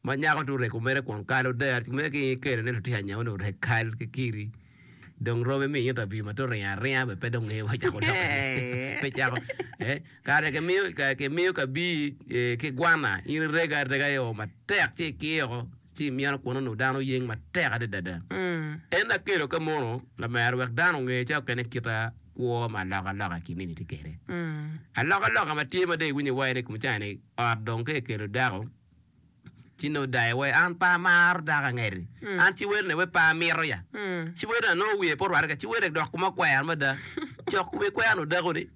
ma nyako to oreko mere kun kalo der ci mere ki kelo ni lutino anya one orek kal ki kiri dong rome mi ita bi ma to ringo aringa be pe dong ngeyo wa cako dok pe cako eh kare ke miyo ke miyo ka bi eh, ki gwana in irega arega i oo matek ci ikiyoko ci imyeno kun ono dano yeng matek adada en akelo ka mono lamero wek dano onge ca okene kita kwo ma aloka aloka kinini ti kere aloka aloka ma tye ma de iwinyo waye ni kum cani Ot dong ka ekelo dako ci nongo dayo wai an pe amaro dako angeri an ci wene wai pe amito ya ci wene nongo wiye pe orwate ci wene dok kome okwer mada cok kome ikwernu dako ni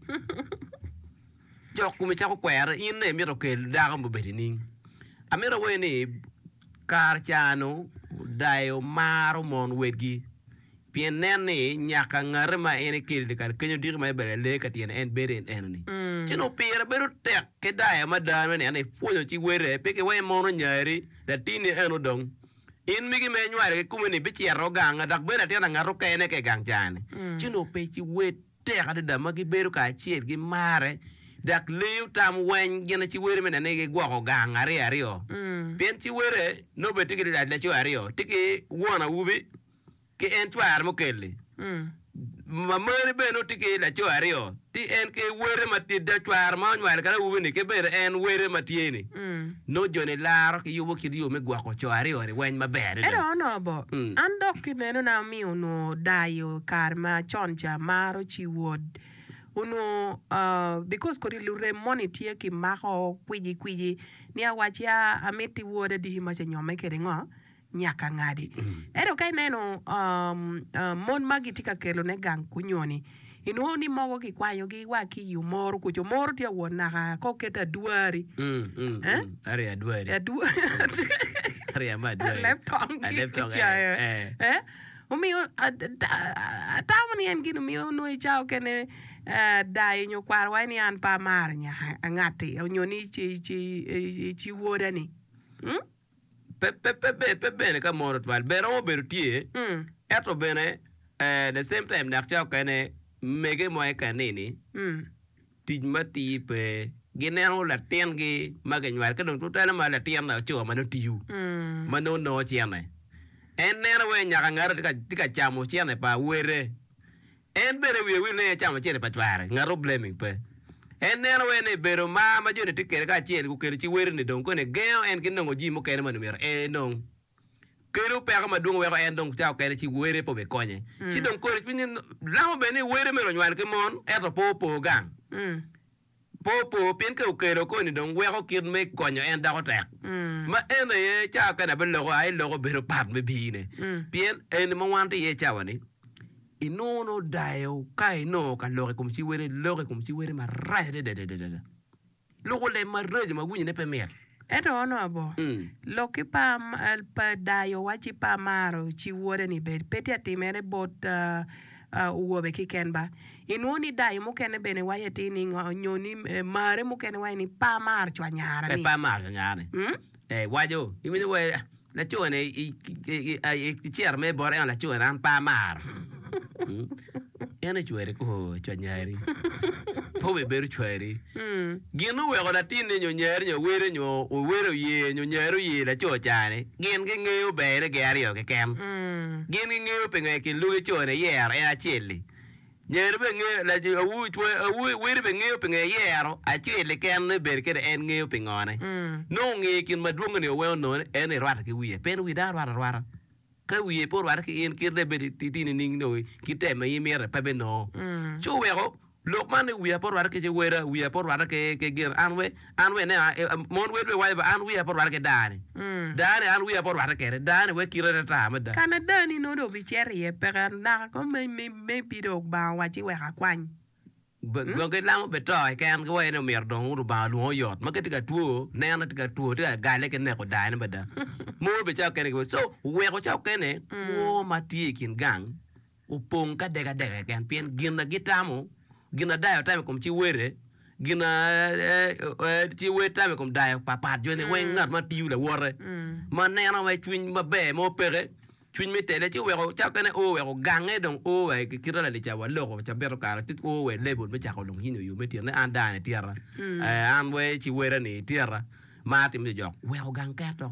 cok kome cako kwere in ne mito kel dako ma obedo ining amito awayi ni kare canu dayo maro mon wegi. Pien nen ni, nyaka ngate ma en ekeli dye kare kenyo odiki ma ebalo i alee ka tyene en bedo en enoni. Ci onongo pire bedo tek ki dayo mada me neno ipwonyo ci wele, pe ki wa imono nyari, latinni eno dong. In migi ma inywalo kikome-ni bicito ganga, dok bed latin angat okene ka i gang caa-ni. Ci onongo pe ci wel tek adada ma gibedo kacel, gimare, dok leyo tam weny gin ci wele me neno ni gigwoko gang aryo aryo. Pien ci wele nongo bene tye ki laco aryo, tye ki won awubi, ki en cware mukelli ma moni bene nongo tye ki laco aryo ci en ki wele ma cware ma onywalo ki awobi ni ki bene en wele ma tye ni nongo jo ni laro ki yubo kit yo me gwoko co aryo ni weng maber adada. Ento onongo bo, an dok ki neno na omiyo onongo dayo kare ma con ca maro ci wod onongo because kodi lurem moni tye ki mako kwiji kwiji ni awac ya amiti woda diki ma ce nyome kede ngo. nyaka ngadi. Ento ka ineno mon ma gitye ka kelone gang kunyo-ni, inwongo ni mogo kikwanyogi wa ki i omoro kuca, omoro tye awot naka ka oket adwari, aleb tong ki kicayo. Omiyo atamo ni en gin omiyo onongo i cawa mukene dayo nyo kwaro waco ni an pe amaro ngati onyo ni ci woda-ni. pe bene ka mono twal bene romo bedo tye ento bene the same time nak ca okene mege mo i kanini tic matir pe gineno latin gi ma ginywalo ka dong tutwale ma latin laco ma nongo tiyo ma nongo nongo cene en neno wai nyaka ngare tye ka camo cene pa wele En bene i wiye wil ni en ecamo cente pa cware, ngato blaming pe. En neno wene ni bedo mar ma joni tye kwede kacel gukelo ci weroni dong koni gengo en ki nongo jii mukene ma omyero en enong. Kelo peko madwong weko en dong ca okene ci were pe obikonye. Ci dong koni cwinye lamo bene ni were mere onywal ki mon ento pe opor gang. Pe opo, pien ka okelo koni dong weko kit me konyo en doko tek. Ma en aye cawa kene abiloko a i loko bedo pat me biine. Pien eni ma wanto iye i cawa-ni, inongo nongo odayo ka inongo ka loko i kom ci wele, iloko i kom ci wele marac adada. Loko lem maraco ma winyone pe mit. Ento onongo bo, lok ki par pa dayo wacci pe amaro ci wode ni bed pe tye atimere bot owobe kiken ba. Inwongo ni dayo mukene bene waco atir ni ngo nyo ni mare mukene waco ni pe amaro cwanyara ni. Pe amaro cwanyara ni. Ee waco. Iwinyo wee. Lacone i ciro mere bot eno lacone an pe amaro. En ocwere kwo cwa nyari. Pe obebedo cwari. Gin oweko latinne nyo nyari nyo wele nyo owele oye nyo nyari oye laco cani gin gi ngeyo bene gin aryo keken. Gin gi ngeyo pingo en ki luge cone yero en acel-li. Ngene bene ngeyo, laco awu, cwony awu wele bene ngeyo pingo eyero acel keken ni bedo kede en ngeyo pingone. Nongo ngeyo kin madwongi ni owengo none en ni rwate ki wiye. Pien wi dano rwate arwata. Ka wiye pe orwate ki in, kit dong ibed i ti nining dong ki tem ma in imito-ni pe binongo. Ci oweko lok man ni wiya pe orwate ki ci weda, wiya pe orwate ki gin, an we. An we ine, mon wedwa iwaco ba an wiya pe orwatte ki dani. Dani an wiya pe orwatte kwede. Dani wek kite ne tar mada. Ka ma dani nongo dong bicito iye, peke anaka ko me, me, me bi dong Lubanga owacci wek akwany. Dong gilamo bene to keken, giwaco ni omyero dong Lubanga lwongo oyot. Ma ka tye ka two, neno tye ka two, tye ka gale ki neko dayo ne mada. Mon bene calo kene giwaco. So, wuweko calo kene kwo ma tye i kin gang opong ki adekadek keken, pien gin na gitamo, gin na dayo tamo i kom ci wele, gin na ci wel tamo i kom dayo papat joni weng, ngat ma tiyo lawote, ma neno wai cwiny maber mo peke, cwiny me tele, ci oweko cawa kene o weko gange dong o wa ki kite lalica wa loko cabito kare ci o wa i level me cako lung cwiny nyo yo me tyene, an dano ni tyeta, an wai ci wele ni tyeta, mar timo jojok, weko gang keto.